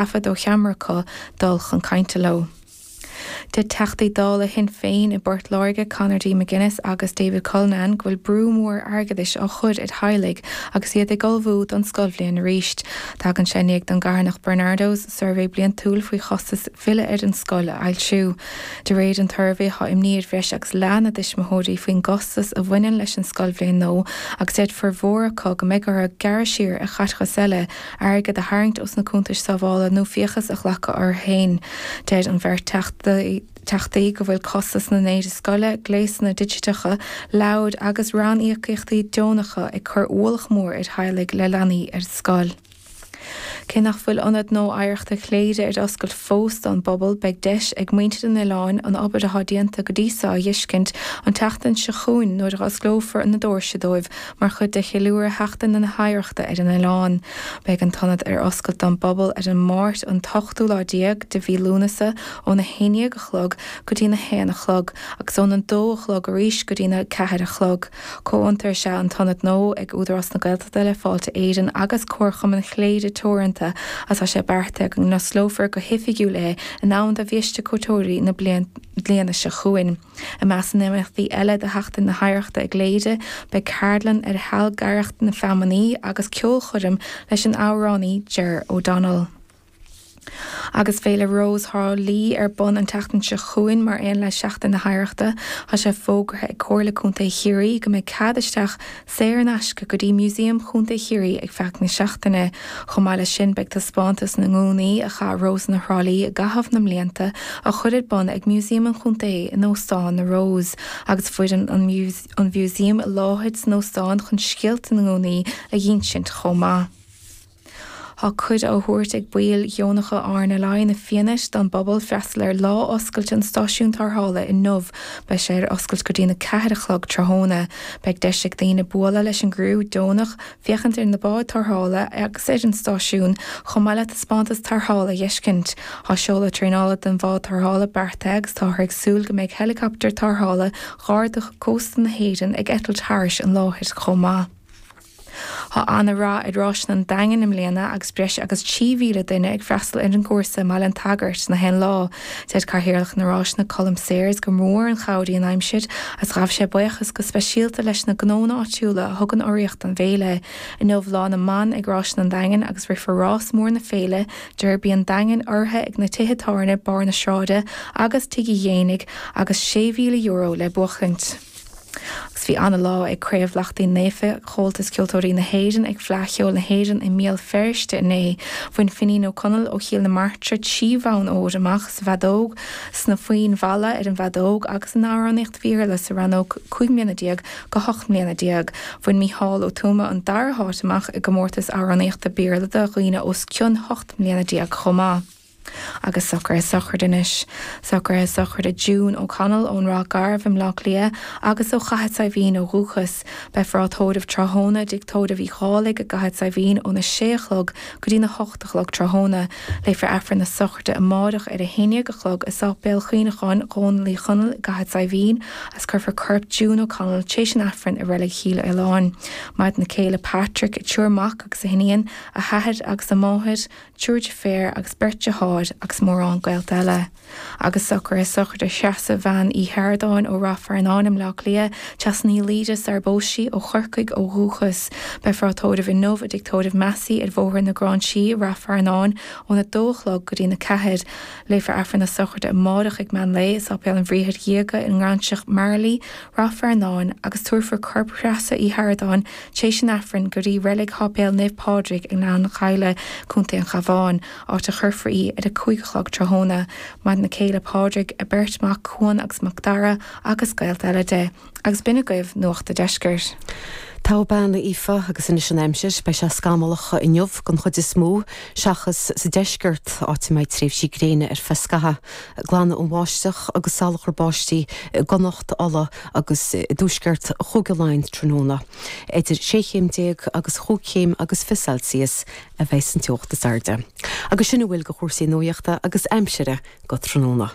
taifead ó cheamara acu dul chun cainte leo. Deir Teachtaí Dála Shinn Féin i bPort Láirge, Conor D McGuinness agus David Cullinane go bhfuil brú mór airgeadais á chur ar theaghlaigh agus iad ag ullmhú don scoilbhliain arís. Tagann sé i ndiaidh don gcarthanacht Barnardos suirbhé bliantúil fé chostas filleadh ar an scoil a fhoilsiú. De réir an tsuirbhé tá imní ar bhreis agus leath na dtuismitheoirí faoin gcostas a bhaineann leis an scoilbhliain nódh agus deir formhór acu go mbeidh orthu gearradh siar ar chaiteachas eile airgead a tharraingt ós na cuntais sábhála nó fiachas a ghlacadh orthu féin. Deir an bheirt Teachtaí go bhfuil costas na n-éidí scoile, gléasanna digiteacha, leabhair agus ranníocaíochtaí deonacha ag cur ualach mór ar theaghlaigh le leanaí ar scoil. Cé nach bhfuil Ionad Nódh Oidhreachta Chléire ar oscailt fós don bpobal, beidh deis ag muintir an oileáin an obair atá déanta go dtí seo a dheiscint an tseachtain seo chugainn nuair a osclófar na dóirse dóibh Mar chuid de cheiliúradh Sheachtain na hOidhreachta ar an oileán, beidh an t-ionad ar oscailt don bpobal ar an Máirt an t-ochtú lá déag de mhí Lúnasa óna haon dhéag a chlog go dtí'n a haon a chlog agus óna dó a chlog arís go dtí'n a ceathair a chlog. Comhfhiontar is ea an t-ionad nódh ag Údarás na Gaeltachta le Fáilte Éireann agus Comharchumann Chléire Teoranta agus tá sé beartaithe go n-osclófar go hoifigiúil é in am do bhiaiste cuairteoirí na bliana seo chugainn. I measc na n-imeachtaí eile do Sheachtain na hOidhreachta i gCléire, beidh ceardlann ar shealgaireacht na feamainní agus ceolchoirm leis an amhránaí Ger O'Donnell. Agus Féile Rós Thrá Lí ar bun an tseachtain seo chugainn mar aon le Seachtain na hOidhreachta, tá sé fógartha ag Comhairle Contae Chiarraí go mbeidh cead isteach Saor in aisce go dtí Museum Chontae Chiarraí ar feadh na seachtaine. Chomh maith leis sin beidh taispeántas na ngúnaí a chaith Rósanna Thrá Lí i gcaitheamh na mblianta á chur ar bun ag Museum an Chontae in Óstán na Rose agus foireann an Mhuseum i láthair san óstán chun scéalta na ngúnaí a dh'ínsint chomh maith. Tá cuireadh á thabhairt ag baill dheonacha RNLI na Fianaite don bpobal freastal ar lá oscailte an stáisiúin tarrthála inniu. Beidh sé ar oscailt go dtí'n 4 a chlog tráthnóna. Beidh deis ag daoine bualadh leis an gcriú deonach, féachaint ar na báid tarrthála agus ar an stáisiún, chomh maith le taispeántas tarrthála a dh'fheiscint. Tá seoladh traenála don bhád tarrthála beartaithe agus táthar ag súil go mbeidh helicopter tarrthála Gharda Cósta na hÉireann ag eitilt thairis an láthair chomh maith. Tá ana rath ar Ráiseanna an Daingin i mbliana agus breis agus 3,000 duine ag freastal ar an gcúrsa i mBaile an tSagairt in aon lá. Deir Cathaoirleach na Ráiseanna Colm Sayers gur mór an chabhair í an aimsir agus ghabh sé buíochas go speisialta leis na gnónna áitiúla a thugann urraíocht don bhféile. Inniu Lá na mBan ag Ráiseanna an Daingin agus rithfear rás mór na féile, Derby an Daingin, urraithe ag na tithe tábhairne Barr na Sráide agus Tigh Uí Dhéanaigh agus €6,000 le buachaint. agus bhí ana-lá ag Craobh Lachtaín Naofa, Comhaltas Ceoltóirí na hÉireann ag Fleadh Cheoil na hÉireann i mBéal Feirste inné. Bhain Finín Ó Conaill ó Chill na Martra trí bhonn óir amach sa bhfeadóg, sna foinn mhalla ar an bhfeadóg agus in amhránaíocht Béarla sa rannóg 15 mbliana go 18 mbliana. Bhain Mícheál Ó Tuama an dara háit amach i gcomórtas amhránaíochta Béarla do dhaoine os cionn 18 mbliana chomh maith. agus Socruithe Sochraide Anois, Socruithe Sochraide June O'Connell ón Ráth Garbh i mBleá Cliath agus ó Chathair Saidhbhín ó dhúchas. Beifear á tórramh tráthnóna i dTigh Tórraimh Uí Dhálaigh i gCathair Saidhbhín óna sé a chlog go dtína hocht a chlog tráthnóna. Léifear Aifreann na Sochraide amáireach ar a haon dhéag a chlog i Sáipéal Chuimhneacháin Dhónaill Uí Chonaill i gCathair Saidhbhín agus cuirfear corp June O'Connell tréis an Aifrinn i Reilig Chill Fhaoláin. Maireann a céile Patrick, a triúr mac agus a hiníon, a hathair agus a máthair, triúr deirféar agus beirt dearthár agus mórán gaolta eile agus socruithe sochraide Threasa Bhean Uí Sheardáin ó Ráth Fearnáin i mBleá Cliath, Treasa Ní Laoide sara bpós sí, ó Chorcaigh ó dhúchas. Beifear á tórramh inniu i dTigh Tórraimh Massey ar Bhóthar na Gráinsí, Ráth Fearnáin, óna 2 a chlog go dtína 4. Léifear Aifreann na Sochraide amárach ag meán lae i Sáipéal an Bhriathair Dhiaga i nGráinseach Marlay, Ráth Fearnáin, agus tabharfar corp Threasa Uí Sheardáin tréis an Aifrinn go dtí Reilig Sháipéal Naomh Pádraig i nGleann Ghaibhle, Contae an Chabháin, áit a chuirfear í ar a cúig a chlog tráthnóna. Maireann a céile Pádraig, a beirt mhac Cuan agus Mac Dara agus gaolta eile di. Agus b'in agaibh Nuacht a' Deiscirt. Taobh Beannaithe Aoife agus Anois an Aimsir, beidh sé scamallach inniu den chuid is mó, seachas sa deisceart, áit a mbeidh tréimhsí gréine ar feadh scathaimh. Glanfaidh an bháisteach agus salachar báistí i gConnacht, Uladh agus i dtuaisceart Chúige Laighean tráthnóna. Idir sé chéim déag agus chúig chéim agus fiche Celsius a bheidh an teocht is airde. Agus sin a bhfuil de chúrsaí nuachta agus aimsire go tráthnóna.